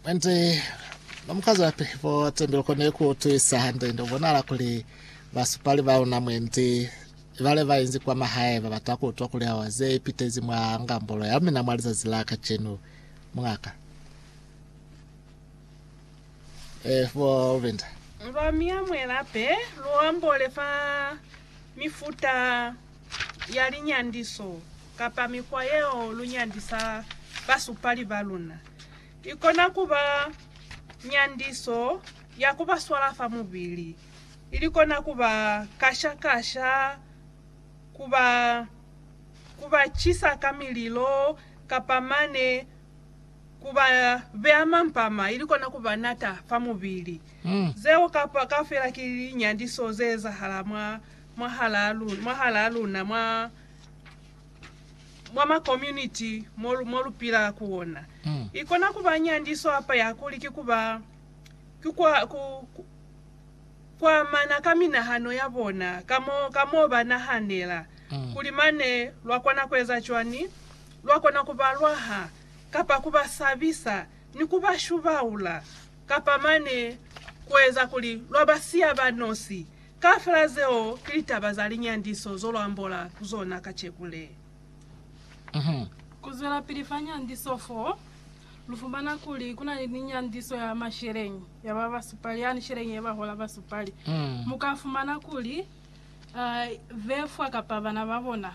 Mwendi no mukazapi bo tembelo ko ne ku tuisa hande ndo bonala kuli basupali ba una mwendi ibale ba inzi kwa mahae ba bata ku utwa kuli awa ze ipitezi mwa ngambolo ya mina mwa lizazi la kacenu. Mungaka eh, bo Lubinda. Lwa mia mwe lape lu ambole fa mifuta. ya linyandiso kapa mikwa yeo lu nyandisa basupali ba luna. I kona ku ba nyandiso ya ku ba swala fa mubili, ili kona ku ba kasha-kasha, ku ba ku ba cisa ka mililo, kapa mane ku ba beya mampama, ili kona ku ba nata fa mubili. Zeo kaufela ki linyandiso ze ezahala mwa mwahalaa luna mwa ma community mo lu pilaa ku ona. I kona ku ba nyandiso hapa ya kuli ki ku ba ki ku amana ka minahano ya bona, ka mo ba nahanela, kuli mane lwa kona ku eza cwani, lwa kona ku ba lwaha, kapa ku ba sabisa ni ku ba shubaula, kapa mane ku eza kuli lwa ba siya ba nosi. Kaufela zeo ki litaba za linyandiso zo lwa ambola ku zona kaceku le. Ku zwelapili fa nyandiso fo, lu fumana kuli ku na ni linyandiso ya masheleñi ya ba basupali, yani sheleñi ye ba hola basupali. Mu ka fumana kuli be fwa kapa bana ba bona,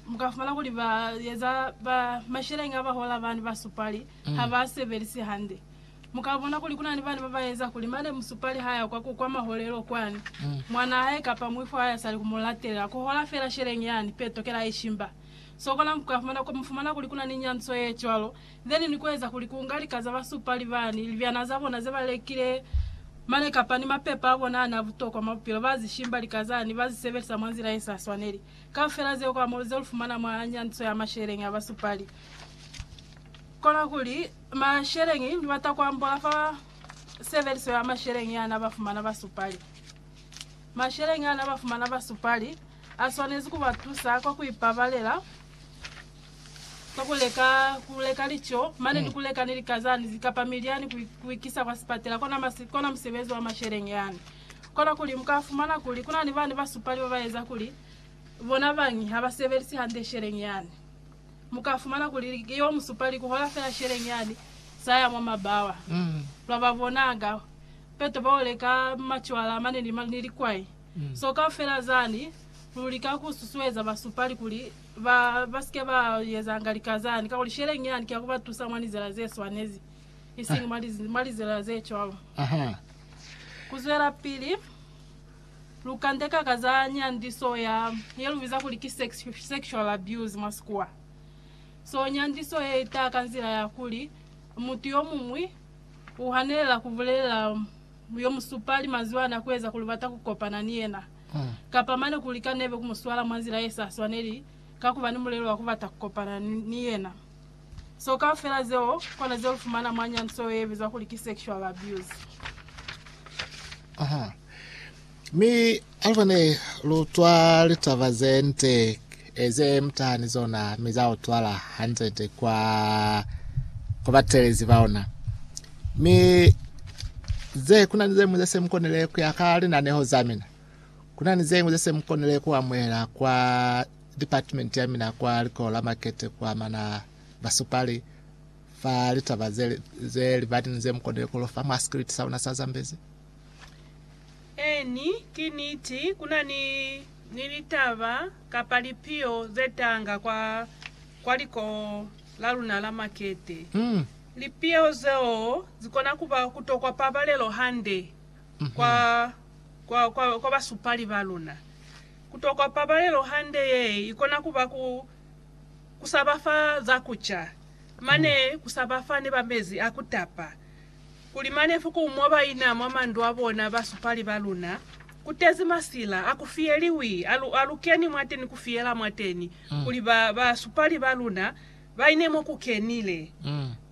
mu ka fumana kuli ba eza, ba masheleñi a ba hola bani basupali ha ba a sebelisi hande. Mu ka bona kuli ku na ni bana ba ba eza kuli mane musupali ha ya kwa ku kwa maholelo kwani, mwanaa hae kapa muifwi wa hae a sa li ku mu latelela, ku hola feela sheleng yani, peto, kela ye shimba. Sokolang ku ka fumana, ku fumana kuli ku na ni nyanziso ye cwalo, then ni ku eza kuli ku nga lika za basupali bani, libyana za bona ze ba lekile mane kapa ni mapepa a bona a n'a butokwa mwa bupilo, ba zi shimba lika zani, ba zi sebelisa mwa nzila ye sa swaneli. Kaufela zeo kwa mo ze lu fumana mwa nyanziso ya masheleng a basupali. Kola kuli, masheleñi ni bata kuambola fa sebeliso ya masheleñi ana ba fumana basupali. Masheleñi ana ba fumana basupali a swanezi ku ba tusa kwa ku ipabalela ka ku leka, ku leka lico, mane ni ku leka ni likazani kapa milyani ku, ku ikisa kwa sipatela. Kona, masi, kona musebezi wa masheleñi yani. Kola kuli, mu ka fumana kuli kuna ni bani basupali ba ba eza kuli bona bañi ha ba sebelisi hande sheleñi yani. Mu ka fumana kuli yo mu supa li kuhola fela sheleng yani sa ya mwa mabawa. Lwa ba bona ka peto bao leka macwala a mane ni likwai. So kaufela zani lu lika ku susueza ba supali kuli ba ba si ke ba ezanga lika zani, kakuli sheleng yani ki ya ku ba tusa mwa lizela ze swanezi, isiñi mwa lizela ze cwalo. Ku zwelapili. Lukande ka ka za nyandiso ya ye lu biza kuli ki sex, sexual abuse mwa Sikuwa. So nyandiso ye ita ka nzila ya kuli mutu yo muñwi u hanelela ku bulelela yo mu supali mazwana ku eza kuli u bata ku kopana ni yena, kapa mane ku lika nebe ku mu swala mwa nzila ye sa swaneli ka ku ba ni mulelo wa ku bata ku kopana ni yena. So kaufela zeo kona ze lufumana mwa nyanso ye bizwa kuli ki sexual abuse. Aha. Mi aluba ne lu twa litaba ze nte e ze mutaha ni zona mi za utwala hande-nde kwa kwa batelezi ba ona. Mi ze kuna ni zeñwi ze se mukonile ku ya ka linaneho za mina. Kuna ni zeñwi ze se mukonile ku amuhela kwa Department ya mina kwa Likolo la Makete ku amana basupali fa litaba ze libati ni ze mu konile ku lofa mwa sikiliti sa luna sa Zambezi. Eeni, ki niti, ku na ni, ni litaba kapa lipiho ze tanga kwa, kwa Likolo la luna la Makete. Lipiho zeo zi kona ku ba ku tokwa pabalelo hande kwa, kwa, kwa, kwa basupali ba luna. Ku tokwa pabalelo hande ye i kona ku ba ku, ku sa ba fa za ku ca, mane ku sa ba fa ni ba mezi a ku tapa, kuli mane fuku mo ba ina mwa mandu a bona ba supali ba luna, ku tezi masila a ku fiyeliwi, a lu, a lu keni mwateni ku fiyela mwateni, kuli ba, ba supali ba luna Baine mo ku kenile,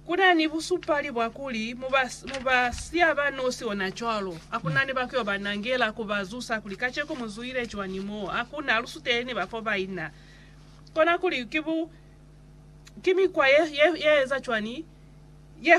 ku na ni busupali bwa kuli mu ba, mu ba siya ba nosi onacwalo. Ha ku na ni ba ku yo ba nangela, ku ba zusa kuli, Kaceko mu zuile cwañi mo? Ha ku na lusuteli ni bafo ba ina. Kona kuli ki bu, ki mikwa ye, ye, ye eza cwañi, ye